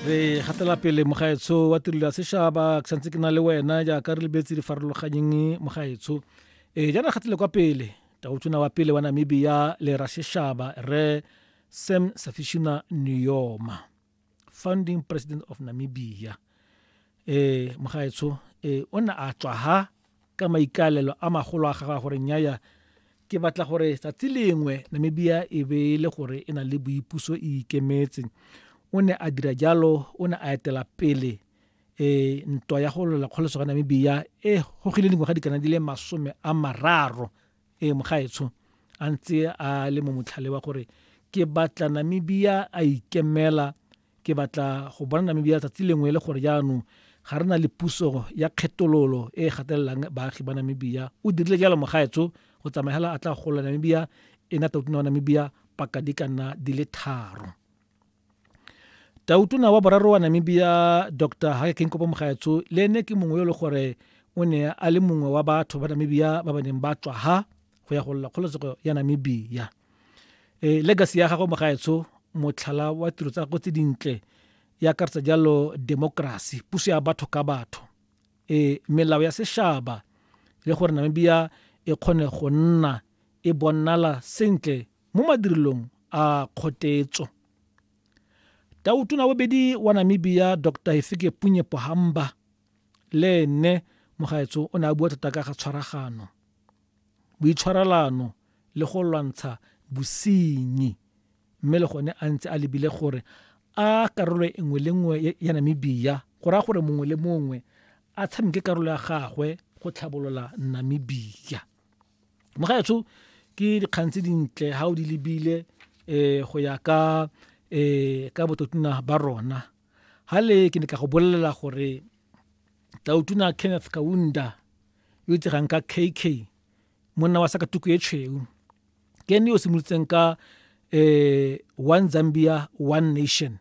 re gatela pele mogaetsho wa tirelo ya sešaba ke santse ke na le wena jaaka re lebetse di farologanyeng mogaetsho e jaana gatele kwa pele taotona wa pele wa namibia le ra sešaba re sam safishina niyoma founding president of namibia ee mogaetsho ee o ne a tswa ha ka maikalelo a magolo a gagwe gore nyaya ke batla gore tsatsi lengwe namibia e be e le gore e na le boipuso e ikemetse o ne a dira jalo o ne a etela pele e ntwa ya go lwela kgoloso ga namibia e gogile dingwaga dikana di le masome a mararo e mogaetsho a ntse a le mo motlhale wa gore ke batla namibia a ikemela Ke batla go bona Namibia tsatsi lengwe e le gore jaanong ga re na le puso ya kgetololo e e gatelelang baagi ba Namibia. O dirile jalo mogaetsho go tsamaya hela a tla gola Namibia e na tautona wa Namibia paka di ka nna di le tharo. Tautona wa boraro wa Namibia Dr. Hage Geingob Mogaetsho le ene ke mongwe yo le gore o ne a le mongwe wa batho ba Namibia ba ba neng ba tswa ha go ya go lla kgololesego ya Namibia. e legacy ya gagwe mogaetsho motlhala wa tiro tsa go tse dintle e akaretsa jalo democracy puso ya batho ka batho e melao ya sešaba le gore namibia e kgone go nna e bonala sentle mo madirelong a kgotetso tautona bobedi wa namibia dr hefike punye pohamba le ene mogaetso o ne a bua thata ka ga tshwaragano boitshwarelano le go lwantsha bosenyi mme le gone a ntse a lebile gore a karolo e nngwe le nngwe ya Namibia go raya gore mongwe le mongwe a tshameke karolo ya gagwe go tlhabolola Namibia mogaetsho ke dikgang tse dintle ga o di lebile um go ya ka um ka bototuna ba rona ga le ke ne ka go bolelela gore tautuna kenneth kaunda yo itsegang ka kk monna wa sa ka tuku e tshweu ke ene yo o simolotseng ka um one zambia one nation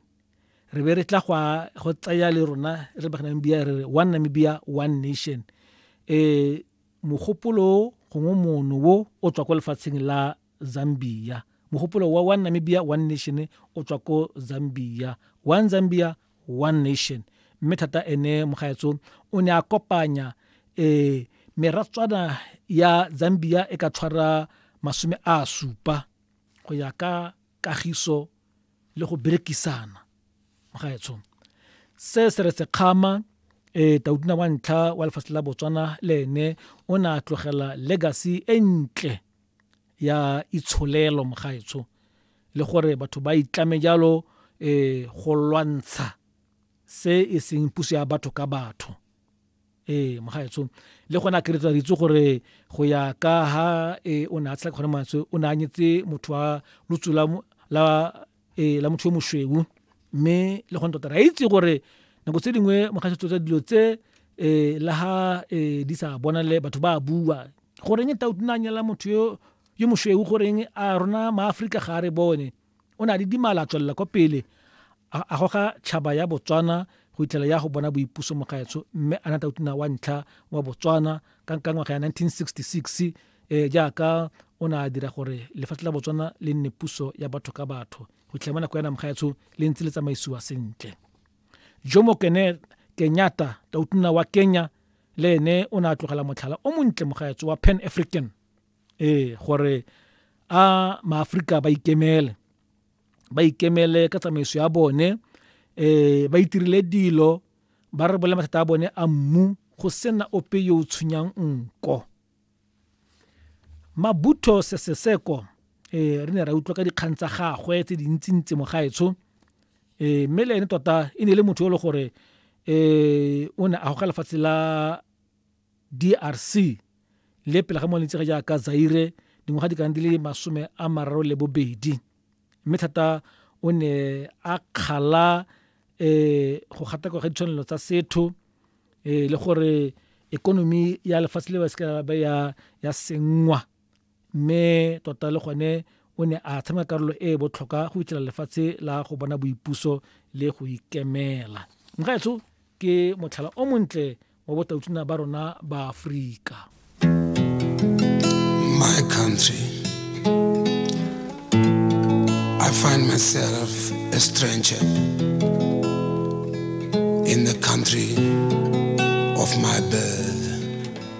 re be re tla go tsaya le rona re ba namibia re re one namibia one nation um mogopolo gongwe mono wo o tswa ko lefatsheng la zambia mogopolo wa one namibia one nation o tswa ko zambia one zambia one nation mme thata ene mogaetso o ne a kopanya um meratswana ya zambia e ka tshwara masome a supa go ya ka kagiso le go berekisana mogaetsho se se re sekgama um e, taudina wa ntlha wa lefatshe la botswana le ene o ne a tlogela legacy e ntle ya itsholelo mogaetsho le gore batho ba itlame jalo um go lwantsha se e seng puso ya batho ka batho ee mogaetsho le gone a keretsa ritse gore go ya ka ha e o ne a tshela kgone mantswe o ne a nyetse motho wa lutso la la e la motho yo moshweu mme le gone tota ra itse gore nako tse dingwe mogaetsho tsa dilo tse um le ha um di sa bonale batho ba bua goreng e tautunanyela motho yo yo mošweu goreng a rona maaforika ga a re bone o ne a le dimala a tswelela kwa pele a goga tšhaba ya botswana go itlhela ya go bona boipuso mogaetsho mme a nata utuna wa ntlha wa botswana ka nka ngwaga ya 1966 um eh, jaaka o ne a dira gore lefatshe la botswana le nne puso ya batho ka batho go itlhela mo nako ya namgaetsho le ntse le tsamaisiwa sentle jomo kene kenyata tautuna wa kenya le ene o ne a tlogela motlhala o montle mogaetso wa pan african ee gore a maaforika ba ikemele ba ikemele ka tsamaiso ya bone um ba itirile dilo ba re bole mathata a bone a mmu go sena ope yo o tshwenyang nko mabutho seseseko um re ne ra utlwa ka dikgang tsa gagwe tse dintsintsi mogaetsho um mme le ene tota e ne e le motho yo e le gore um o ne a goga lefatshe la DRC, le pele ga mo letsege jaaka Zaire dingwaga di kana di le masome a mararo le bobedi mme thata o ne a kgala um go gatakwa ga ditshwanelo tsa setho um le gore ekonomi ya lefatshe le ba seka ba ya senngwa mme tota le gone o ne a tshameka karolo e e botlhokwa go fitlhela lefatshe la go bona boipuso le go ikemela mogaetso ke motlhala o montle wa botautuna ba rona ba aforika my country i find myself a stranger in the country of my birth